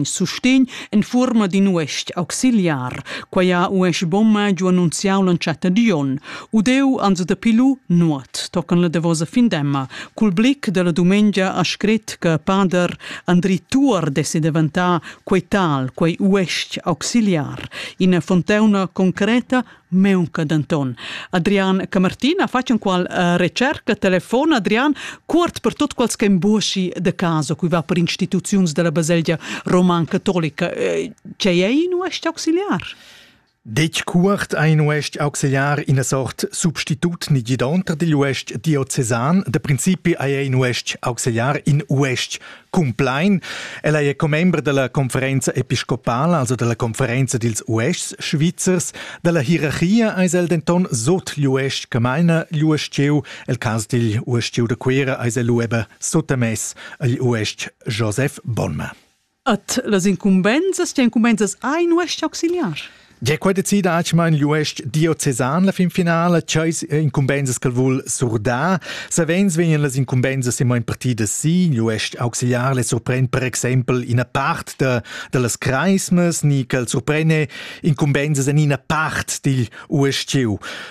sustegn en fuorma d'in uestg auxiliar. Quai ha uestg bomma giu annunziau l'entschatta di on. Udeu ans da pilu nuot tocan la davosa findemma. Cul blic della dumengia ha scrit che pader Andri Tuor dessi deventà quei tal, quei uestg auxiliar. Ina fonteuna concreta Meunca denton. Adrian Camartin ha fatg enqual uh, recerca telefon Adrian cuort per tot quals che emboschi de caso qui va per instituziuns della baselgia roman catolica. Eh, ce ei in uest auxiliar? Dec cuort ein uest auxiliar in a sort substitut ni gidonter digl uest diocesan. De principi ei ein uest auxiliar in uest Cumplain. Ella è commembra della conferenza episcopala, also della conferenza dils uestgs svizzers. Dalla hierarchia eis el denton sot l'uestg Camaina l'uestgieu, el cas digl uestgieu de Cuera eis el ueba sottamess agl uestg Joseph Bonma. At las incumbenzas, die Incumbenzas ein uestg auxiliars? Ge quei decida acma in l'UESC diocesan la finfinala, ceis incumbensas che vul surdar. Savens vegnan las incumbensas immer in partida si, l'UESC auxiliar le surpren per exempel ina part de, de las creismas, ni che el surprene incumbensas en ina part digl USCU.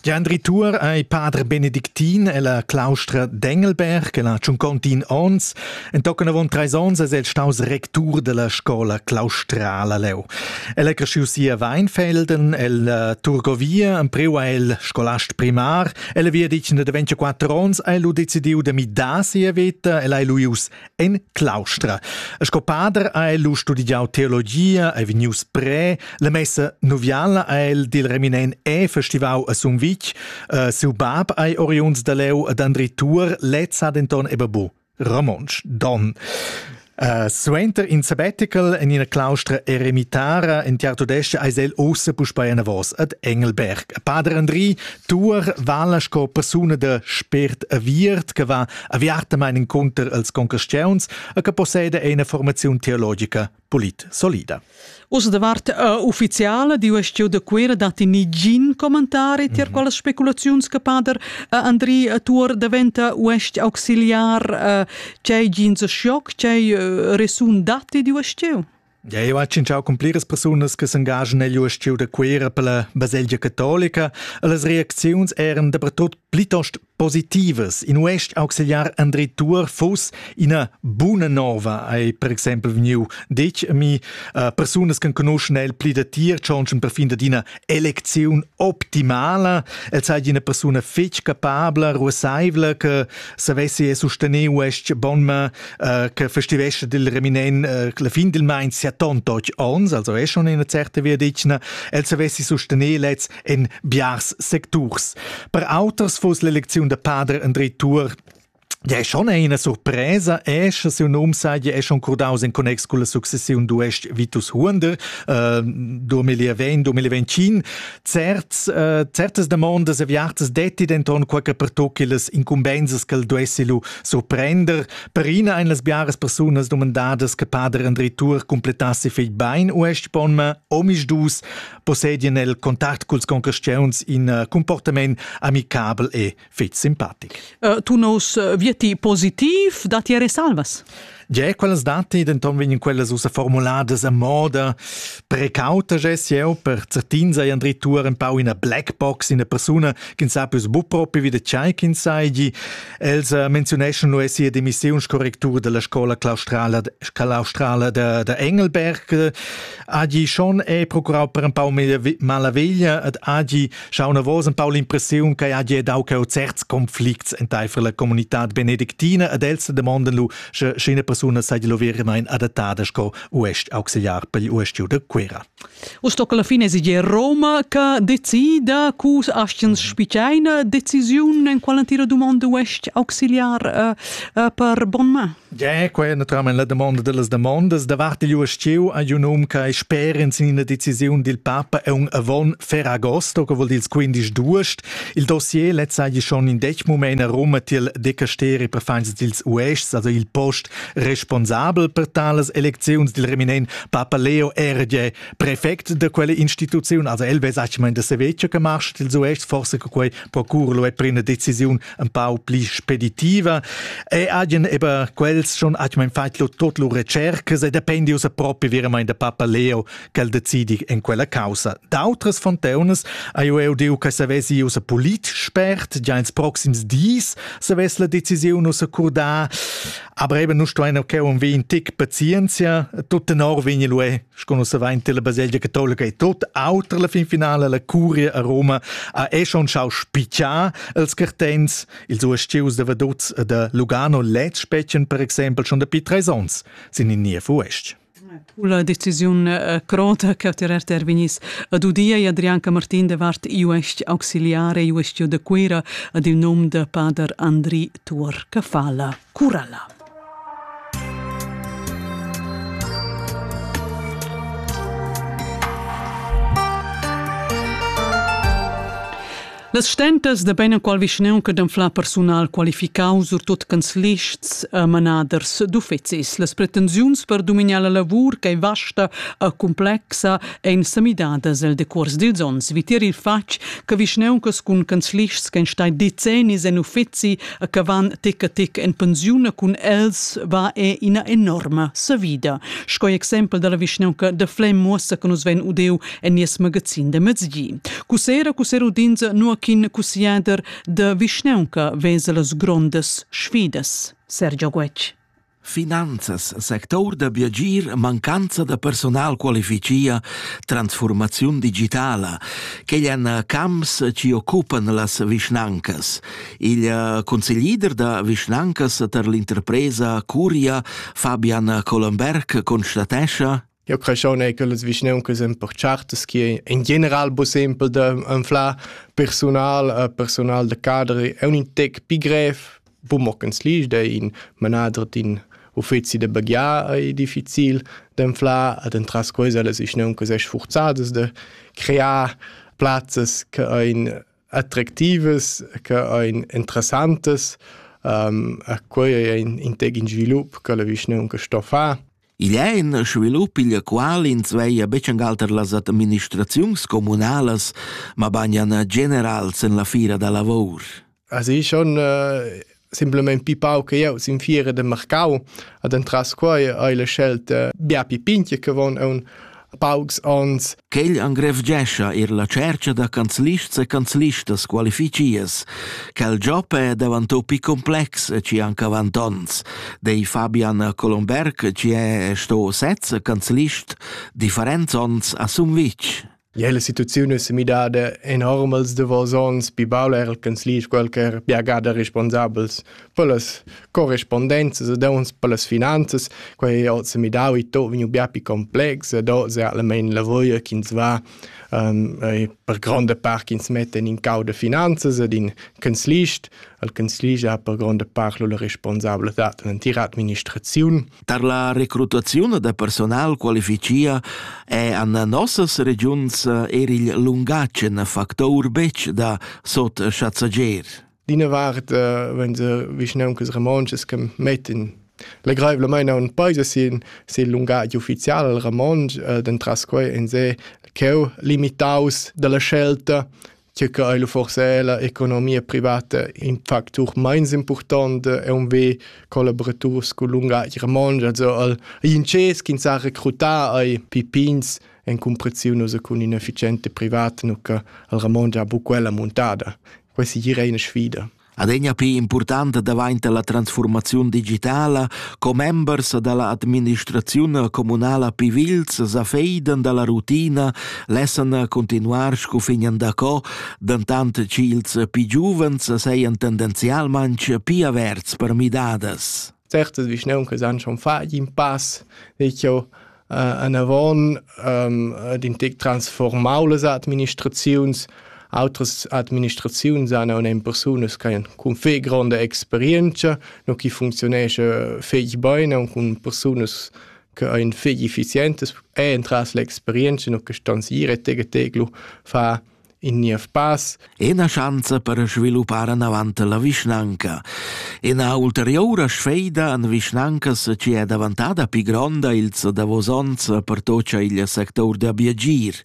Gendri Tuor ei pader benedictin ella claustra d'Engelberg, el ha tschuncontin onns, entochen avon treis onns es el staus rectur della scola claustrala leu. El è cresciu si a Weinfelden, el uh, Turgovia, empreu ha el scolast primar, el è via dic de 24 onns, ha lu decidiu de midar sia veta, el ha lu ius En claustra. Sco pader ha el studiau teologia, è vegnius pre, la messa noviala ha el dil reminen e festivau a Sumvitg, uh, siu bab ei oriunds da leu ad Andri Tur, lez ha denton ebabu romontsch don. Uh, suenter in sabbatical en ina claustra eremitara en tiar tudesca eis el ossa puspei anavos ad Engelberg. Pader Andri Tuor vala sco persuna da spért aviert che va aviartamain encunter als concastiuns e che posseda ina formaziun teologica polit solida. Ussa davart uh, ufficiala di uestio da Cuera datti nigin commentari tier mm -hmm. quelle speculaziuns che pader uh, Andri Tuor diventa uest auxiliar uh, c'è gin shock c'è uh, resun datti di uestio? Eu ha tschintschau cun pliras persunas che s'engagen negl ustieu da Cuera per la baselgia catolica e las reacziuns eran dapertut plitost positivas. In uest auxiliar André Tour fuss ina buna nova, ei per exempel vegniu detg a mi, uh, persunas che conoschen el pli da tier tschonschen per fin da d'ina elecziun optimala. El sai di una persona fetg capabla, ruassaivla, che savessi sustener uest bon, ma äh, che festivescha dil reminen äh, la fin del mein sia tontoch ons, also è schon in certe via dicna, el savessi sostener lez en biars secturs. Per auters fuss l'eleziun de Pader André Tour Ja, è schon eine Surpresa, è se un nome sai, è schon cordaus in connex con la successione d'Uest Vitus Huonder, äh, 2020-2025. certs, uh, certas demandas aviatas detti denton quei che pertocchi las incumbensas che el duessi lu surprender. Per ina ein las biaras persunas domandadas che pader André Tour completassi fig bein uestg pon ma omis dus possedien el contact culs concurrents in uh, comportament amicabel e fich simpatic. Uh, tu nos uh, vieti positiv da ti resalvas? Ge, quellas dati denton vegnan quellas ussa formuladas a moda precauta ges jeu per certin sei Andri Tour ein pau ina black box ina persuna che sa pius bu propi wie de chai kin sei gi els uh, menziuneschon lu sia demissionskorrektur della scola claustrala claustrala de, de Engelberg agi schon e procurau per un pau mala veglia ad agi Schaun avos empau l'impressiun che ha dau cheu certs conflicts enteifer la comunitad benedictina ed els demonden lu, sche sch'ina persuna seigi lu veramein adattada sco uest auxiliar per il uestgiu de Cuera. Uss tocca la fine esiger Roma che decida cu astgens spiceina decisiun en quella tira dumonda uest auxiliar uh, uh, per bon ma. Ja, quai è naturalmain la damonda da las damondas. Davart igl ustieu ha un um che sper in sin ina decisiun dil papa è un avon Ferragosto, che vuol dir ils 15 d'uost. Il dossier letz sei schon in dec mument a Rom til decasteri per feins dils uests, also il post responsabel per tales elecziuns dil reminent Papa Leo era ja prefect de quelle instituziun, also el vesa da se vecchio che marsch dils uests, forse che quei procur lo è per una decisiun empau pli speditiva e agen eba quels schon hat mein feit lo tot lo recercas e dependi usa propi veramente da papa Leo quel decidi in quella causa d'autras fonteunas a io eu diu che savesi usa polit spert già ins proxims dis se ves la decisiun usa curda aber eben nu sto ein okay un vi in tic pazienzia tutte nor vegni lu e Sco nus savain tilla baselgia catolica e tot auter la fin finala la curia a Roma ha è schon schau spichar els cartents ils uestgius da Vaduz e da Lugano lez spetchen per exempel schon dapi treis ons sin in niev uestg. La decisiun eh, crota che tirar terminis ad udia e Adrianca Martin de Vart iuest auxiliare iuestio de Cuira ad il nom de pader Andri Tuor Cafala Curala. Las stentas da beinenqual vischnaunca d'anflar persunal qualificau surtut canzlists e manaders d'uffecis. Las pretensiuns per dominar la lavur che vasta e complexa ein semidadas el decuors dils onns. Vitier il fatg che vischnauncas cun canzlists che ein stai decennis en uffeci a che van tic a tic en pensiun cun els va è ina enorma savida. Sco exempel dalla vischnaunca de Flem muossa che nus ven udeu en nies magazin de mezgi. Cusera, cusera udins nuachin cusiader de vischnaunca vesel las grondas sfidas. Sergio Guetg. Finanzas, sector da biagir, mancanza da personal qualificia, transfurmaziun digitala, quegl èn camps chi occupan las vischnancas. Il consiglier da vischnancas tar l'interpresa Curia, Fabian Collenberg, constatescha Eu creschon eir cullas vischnauncas importatas chi in general bu simpel da anflar persunal, persunal da cader è ün tec pi grev, bu mockens l'isch da in manader d'in uffizi da baghiar ei difficil d'anflar ad entras quesa las vischnauncas es sfurzadas da crear plazzas che ein attractivas, che ein interessantas, a quei ei in tec in svilup che la vischnaunca sto far. Igl è in svilup, igl qual ins veia betschangalter las administraziuns communalas, mabagnan generals en la fira da lavor. Also ich schon äh, simplement pi pau che jau sin fiera de marcau ad entras quai hai le scelt äh, bia pi pinche che von un paucs ons. Quel engrevgescha er la cerca da canzlists e canzlistas qualificias. Quel job è davantò pi complex e ci anca avant ons. Dei Fabian Colomberg ci è sto sezza canzlist differents ons a Sumvitsch. Ja, la situaziun è midada enorm als davos ons, pi baul er canzlist qualcher piagada responsabels Pellas corrispondenzas ed ons pellas finanzas, quai ho se midau i to vegniu bia pli complex ed oz è almain la voglia ch'ins va um, per gronda part ch'ins metta in cau da finanzas ed in canzlist. Il canzlist ha per gronda part la responsabilitad d'entira administraziun. Tar la recrutaziun da personal qualificia è an nossas regiuns er il lungatg in factor betg da sot chatschager. d'ina vart uh, wenn se vischnauncas romontschas che mettin legreivlamain a un paese sin sin lungatg ufficial romontsch uh, dentras quei en se cheu limitaus dalla scelta che che ei forse la economia privata in factor meins important e un ve collaborators cu lungatg romontsch also al inces ch'in sa recrutar ai pipins en cumpreziun cun inefficiente privata nu che al Ramon già bu quella montada Quei segir ei ina sfida. Adegna pli impurtanta daventa la transformaziun digitala, commembers dalla administraziun communala Pivilz sa feidan dalla rutina, lessan continuar sco fignan daco, dentant ch'ils più giuvens seien tendenzialmente più averts per midadas. Certes, vischneun che san schon fa in pass, dic io, äh, anavon ähm, in tec transformau las administraziuns Outras administraziuns han un persunas che han cun fe gronda experienza, no chi funzionesce fetg bene und cun persunas che ein fetg effizientes e entras l'experienza no che stanz ire tege teglu fa in niev pass. Ina schanza per sviluppar anavant la vischnanca. Ina ulteriura sfeida en vischnancas che è davantada pi gronda ils davos onns pertocha il sector da biagir.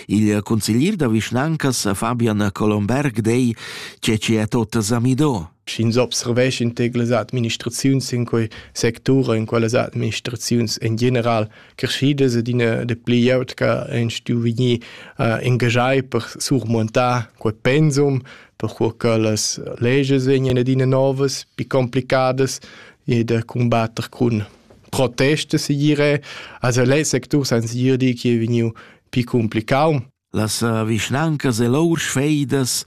Il consiglier da vischnancas Fabian Colomberg dei che ci è tot zamido. Sch'ins observescha in tegle administraziuns in quei sector, in quellas administraziuns en general, creschidas ed ina da pli glieud che han stuì vegnir uh, engagiai per surmontar quel pensum, perché che las leges vegnan adina novas, più complicadas e da combattere con proteste, si dire. Also, le sectors han si dire che è vegniu più complicato. Las eh, vischnancas e lur sfeidas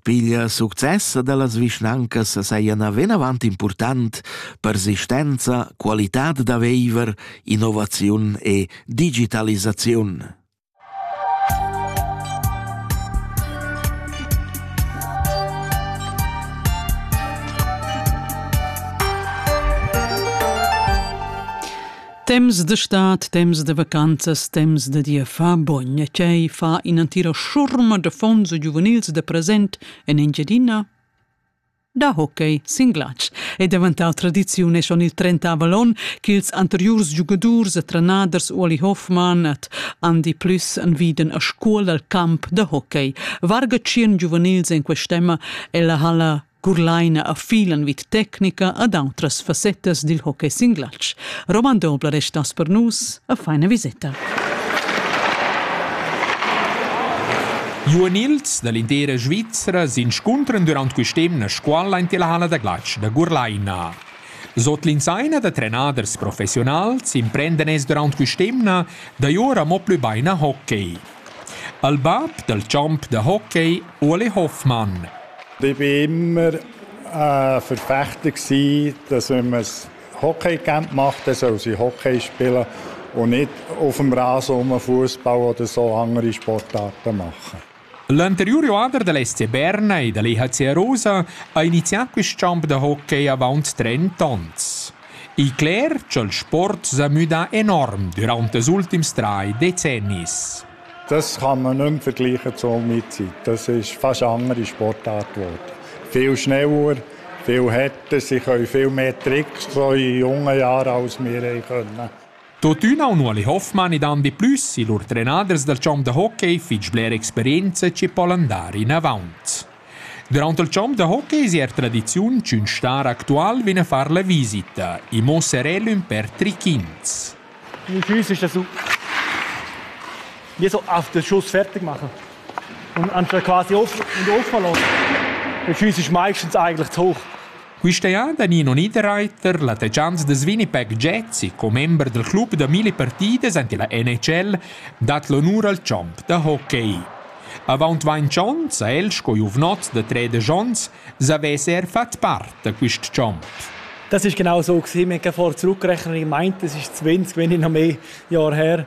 piglia success dellas vischnancas sajan vinavant important persistenza, qualitad da viver, innovaziun e digitalisaziun. Temps de stat, temps de vacanzas, temps de dir fa bogn e tgei fa in'entira schurma de fons giuvenils de present en Engiadina? Da hockey sin glatsch è daventar tradiziun e schon il trentavel onn ch'ils anteriurs giugadurs e trenaders Uoli Hoffmann et Andy Plüss enviden a scuol al camp da hockey. Varga tschien giuvenils en quest'emma e la halla Curlaina a filan vid tecnica ad autras fassettas dil hockey singlatsch. Roman Dobler restas per nus a feina viseta. Giuvenils dall'intera Svizra s'inscuntran durant quest'emna scuola in la hala da glatsch da Gurlaina. Sot l'insaina da trenaders professionals imprendan es durant quest'emna da ora mo plü bain a hockey. al bab dal champ da hockey Ueli Hoffmann. Ich war immer ein Verfechter dass wenn man das Hockeycamp macht, dann soll sie Hockey spielen und nicht auf dem Rasen rum Fußball oder so andere Sportarten machen. L'anterior joader del SC Berna e dall'EHC Rosa ha inizià quest champ da hockey avant 30 onns. Il cler cha'l sport s'ha müdà enorm düraunt ils ultims trais decennis. Das kann man nicht mehr vergleichen zu Olmizzi. Das ist fast eine andere Sportart geworden. Viel schneller, viel härter, sie können viel mehr Tricks so in jungen Jahren, als wir haben können. Tuttina un uali Hoffmann ed Andi Plüssi, lur trenaders dal champ da hockey, fich bler experienza chi po'l andar inavaunt. Durant il champ da hockey sia tradiziun ch'ün star actual vegn a far la visita. I muossa el ün pêr trichins. Mein Füße ist das so. Wie so auf den Schuss fertig machen. Und anstatt quasi offen und offen lassen. Der Fuß ist meistens eigentlich zu hoch. Questa jada Nino Niederreiter, la techanza da Swinnipeg Jazzy, commember del club da mille partidas ante la NHL, dat l'onur al champ da hockey. Avant ventg onns ha el sco giuvnot da tredisch onns savess er fat part da quist champ. Das ist genau so gewesen. Wir haben vor zurückgerechnet und gemeint, das ist 20, wenn nicht noch mehr Jahre her.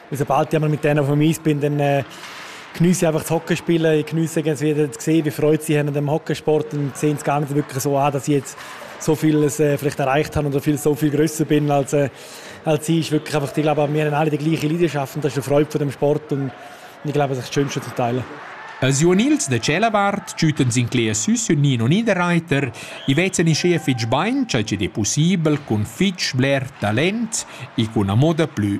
sobald ich einmal mit denen auf dem Eis bin, dann äh, genieße ich einfach das Hockeyspielen. Ich genieße ganz wieder zu sehen, wie Freude sie haben an dem Hockeysport und sehen es gar nicht wirklich so an, dass ich jetzt so vieles äh, vielleicht erreicht habe oder viel, so viel größer bin als, äh, als sie. ist wirklich einfach, ich glaube, wir haben alle die gleiche Leidenschaft und das ist eine Freude von dem Sport und ich glaube, das ist das Schönste zu teilen. Jo Nils de Celabart schütten sin clé süs un Nino Niederreiter, i vezzen i chef fitch bain, ciò è possibile con fitch bler talent e con una moda più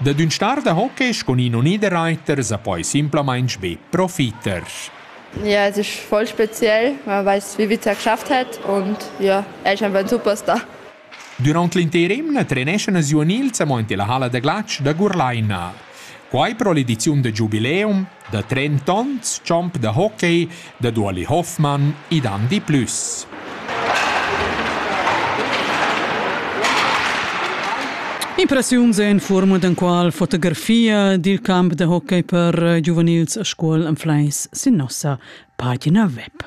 Dad ün star da hockey sco Nino Niederreiter sa poi simplamaing be profiter. Ja, es ich voll speziell. Man weiß, wie viel er geschafft hat und ja, er ist einfach ein Superstar. Durant l'inter emna treneschan els giuvenils amo ante la halla da glatsch da Gurlaina. Quai pro l'ediziun da giubileum Da trentonts champ da hockey dad Ueli Hoffmann id han di plüs. Impressiuns en fuorma d'enqual fotografia dil camp da hockey per giuvenils a scuol en Fleis sin nossa pagina web.